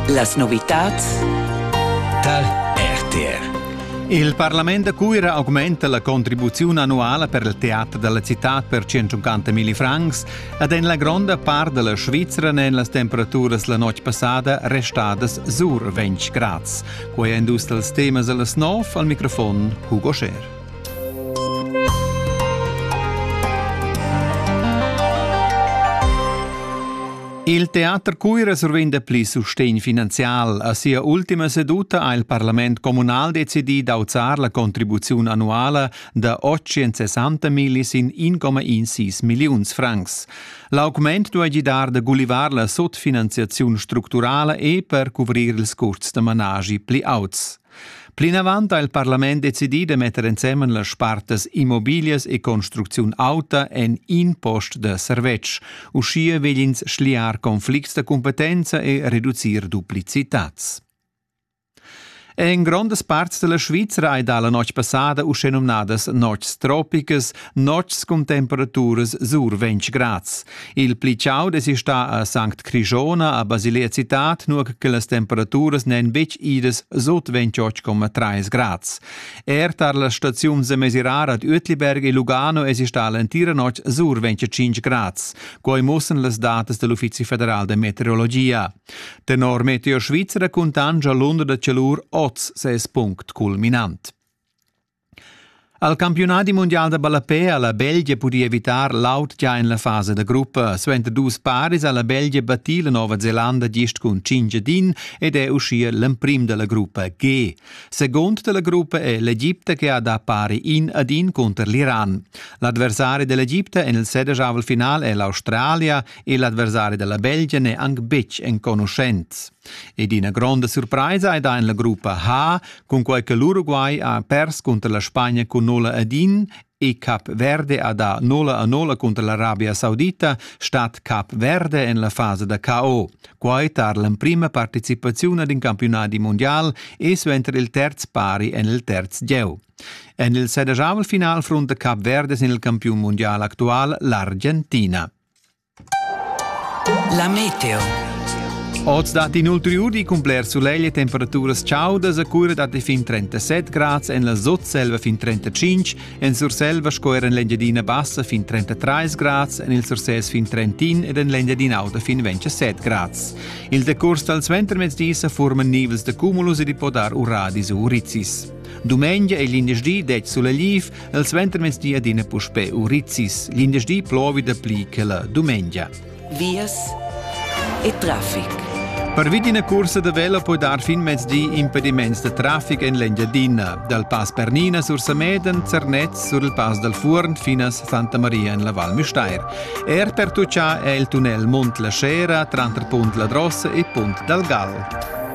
Las novitads tar RTR. Il Parlament da Cuira augmenta la contribuziun annuala per il teater dalla citad per 150.000 francs ed en la gronda part della Svizra n'en las temperaturas la notg passada restadas sur 20 grads. Quei è dus dals temas dalla snov al microfon Hugo Scher. Il teater Cuira survenda pli sustegn finanzial. A sia ultima seduta ha il parlament communal decidì d'auzar la contribuziun annuala da 860 milli sin 1,16 milliuns francs. L'augment duai gidar da gulivar la sotfinanziaziun structurala e per cuvrir ils custs da managi pli auts. Plinavant ha il parlament decidì da metter ensemen las spartas immobiglias e construcziun auta en in post da servetsch. Uschia vegl ins schliar conflicts da competenza e reducir duplicitads. En grondas parts della Svizra hai dalla notg passada uschè numnadas notgs tropicas Notgs cun temperaturas sur 20 grads. Il pli chaud es stà a Sankt Crishona a Basilea Cittad, nur che las temperaturas n'èn betg idas sot 28,3 grads. Er tar la staziun Semesirar ad Uetliberg e Lugano es stà l'entira notg sur 25 grads. Quai mussan las datas del Uffizi federal de meteorologia. Tenor Meteo Svizzera cuntangia l'onda da cialur oz ses punct culminant. Al campiunadi mundial da ballapè ha la Belgia pudì evitar l'aut gia en la fasa da gruppa. Suenter dus paris ha la Belgia battì la Nova Zelanda gist cun cinc din ed è uschia l'emprim da la gruppa G. Segund da la gruppa è l'Egipta che ha dà pari in ad in cunter l'Iran. L'adversari dell'Egipta en il sedejavel final è l'Australia e l'adversari da la Belgia n'è anc betg enconuschent. Ed ina gronda surpraisa ei da en la gruppa H, cunquei che l'Uruguay ha pers cunter la Spagna cun nola ad in e Cap Verde ha dà nola a nola cunter l'Arabia Saudita, stat Cap Verde en la fasa da KO. Quai tar l'emprima participaziun ad in campiunadi mondial e suenter il terz pari en il terz gieu. En il sedajavel final frunta Cap Verde sin il campiun mundial actual l'Argentina. La meteo. Oz dat in ulteriuri cun bler sulegl e temperaturas chaudas a cura da fin 37 grads en la Sotselva fin 35, en Surselva sco er en l'Engiadina Bassa fin 33 grads, en il Sursès fin 31 ed en l'Engiadina Auta fin 27 grads. Il decurs dal suentermezdi sa forman nivels da cumulus ed i po dar uradis u urizzis. Dumengia e glindesdi dec sulegl El suentermezdi adina puspè Urizis, lindersdi plovi dapli che la dumengia. Vias e traffic. Pervi d'ina cursa da vela puoi dar fin mezdi impediments da traffic en l'Engiadina, dal Pass Pernina sur Sameden, Zernez, sur il Pass dal Fuorn finas Santa Maria en la Val Müstair. Er per tucciar è il tunnel Mont la Scera, tranter Punt la Drossa e Punt dal Gal.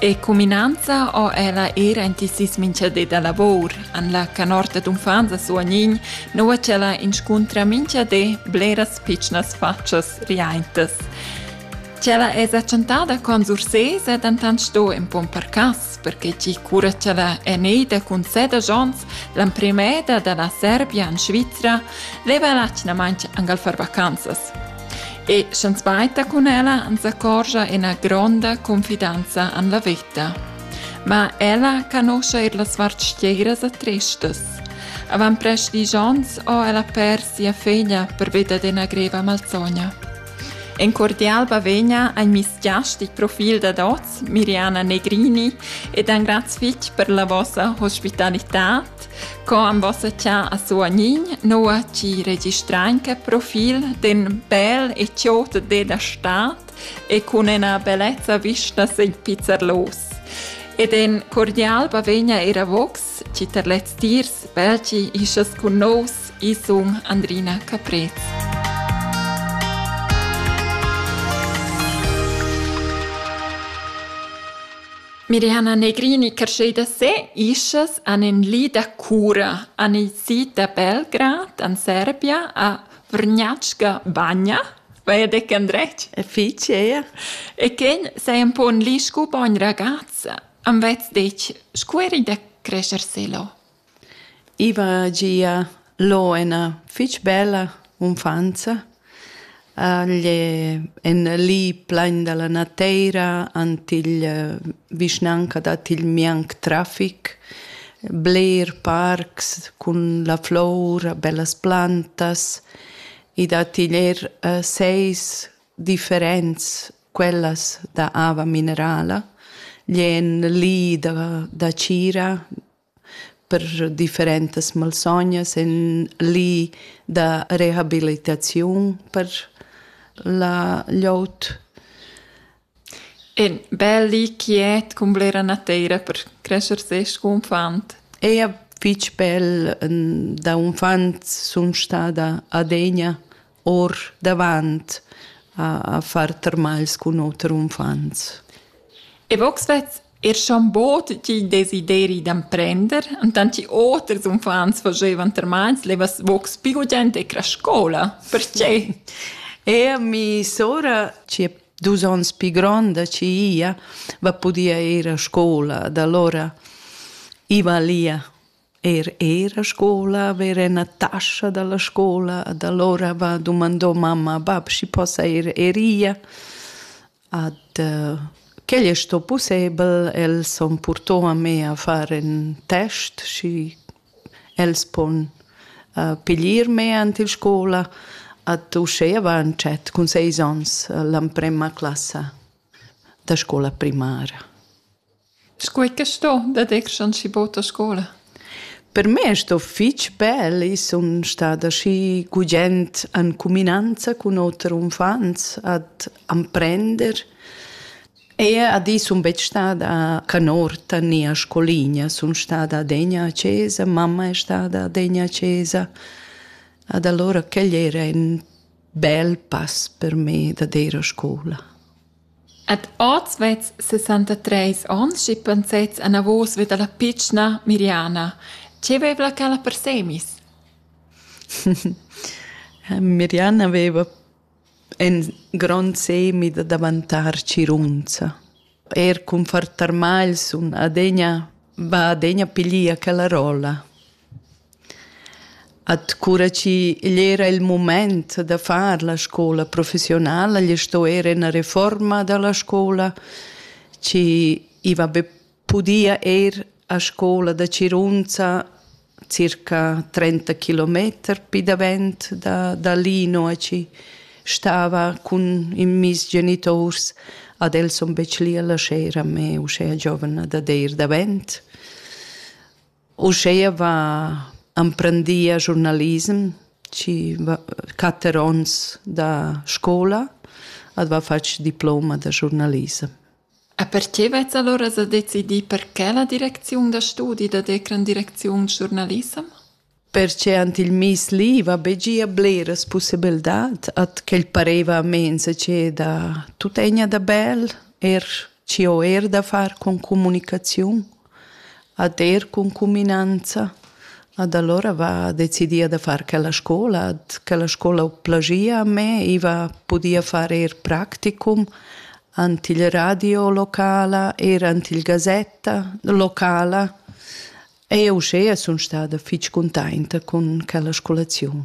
E cuminanza ho ella eir aint il sis minchadi da lavur. An la canorta d'uffants a Suognin nouva ch'ella inscuntra minchadi bleras pitschnas fatschas riaintas. Ch'ella esa chantada con Sursés è dentant sto in pon per cas, perché chi cura ch'ella è neida cun seda jons, l'emprimeda da la Serbia in Svizra, leva l'atgnamaint angal far vacanzas. E sch'enspaita cun ella ans accorgia ina gronda confidanza en la vita. Ma ella canuscha er las vartschieras e tristas. Avant prest dies onns ho ella pers sia figlia pervia d'ina greva malsogna. En cordial bavegna ein misgiastic profil dad oz, Miriana Negrini, ed ein graz fitg per la vossa hospitalitad Co am vossa cha a suanign noa ci registrein che profil d'ün bel e chiot de da stat e cun ena bellezza vista sen pizzerlos. Ed en cordial bavegna era vox ci ter lez tirs belci isas cun nos isung Andrina Caprez. Mirihana Negrini crescheda se, ischas han in li da cura, han i si da Belgrad, an Serbia, a Vrnjačka Banja, vai dec andretg? E fitg, eia. E quen sei un po un li scu bogn ragazza, am vez dec, scu eri da crescer se lo? I va gia lo ena fich bella unfanza. Igl è en li plegn da la nateira, ant igl vischnanca dat igl mianc trafic, bler parcs cun la flour, bellas plantas. I dat igl er seis differents quellas da ava minerala. Igl è en li da, da tgira, per differentas malsognas en li da rehabilitaziun per la glieud. E bel li quiet cun blera nateira per crescer ses confant. E a fitg bel da unfant sun stada adegna or davant a, a far termals cun oter uffants. E vox vet er schon bot tgi desideri d'emprender, und dann die oters uffants facevan termals, levas vox più gente e scola. Perché? E mi sora, ci è dus ons più gronda, ci ia, va podia ir a scuola, da allora iva lia Er era scola haver ena tascha dalla scola ad allora va dumandò mamma bab schi possa ir eria ad uh, quel è sto possibel els han purtò a me a far en test schi els pon uh, piglier me ant il scola ad uschè avant chet cun seis ons uh, l'amprema classa da scola primara. Scuai che sto daditg ans schi bod a scoula? Per me è sto fich bel. I sun stada schi gugent en cuminanza cun oter unfants ad amprender. Eir ad i sun betg stada canorta né a scoligna. Sun stada adegna a chesa, mamma è stada adegna a chesa. Ad allora quel era ün bel pass per me da ir a scoula. Ed oz vezs sessantatreis onns e pensets anavos vi dalla pitschna Miriana. Tgei vevla quella per semis? Miriana veva in grond semi da daventar tgirunza. Er cun far tarmagls sun adegna, va adegna piglier quella rolla. At cura chi igl era il mumaint da far la scoula professiunala, gli sto eir üna refuorma da la scoula chi i va be pudia ir a scoula da Cirunza circa trenta kilometer pi davent da da lì, nua chi stava cun in miss genituors. Ad els sun betg lì a lascher a me uschè giovna dad eir davent. Uscheia va emprendia giurnalism chi va quatter ons da scoula ed va fatg diploma da giurnalism. A perche vets allora sa decidi perché la direcziun da studi da decran direcziun giurnalissem? Perche ant il mis li va be gia bleras possibildat at quel pareva a mensa che da tutegna da bel er ci ho er da far con comunicaziun Ad er cun cuminanza. Ad alura va decidia da far quella scola. Ad quella scola ho plagia a me, i va pudia far eir practicum ant il radio locala, eir ant il gazetta locala. E uschea sun stada fich cuntainta cun quella scolaziun.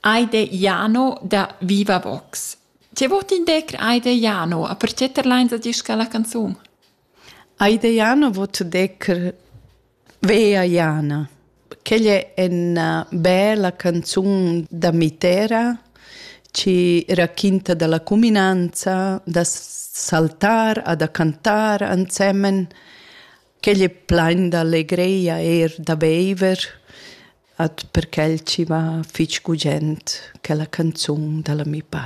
Aide Jano da Viva Vox. Ti vot in decr Aide Jano, a perché terleins a disca la canzun? Aide Jano vot decr Vea Jana. Quella è una bella canzone da mitera ci racconta della cuminanza da saltar a da cantare insieme. Quella è plain d'allegria er da beiver. At per quel chi va fich gugent quella canzun da l'ami Pat.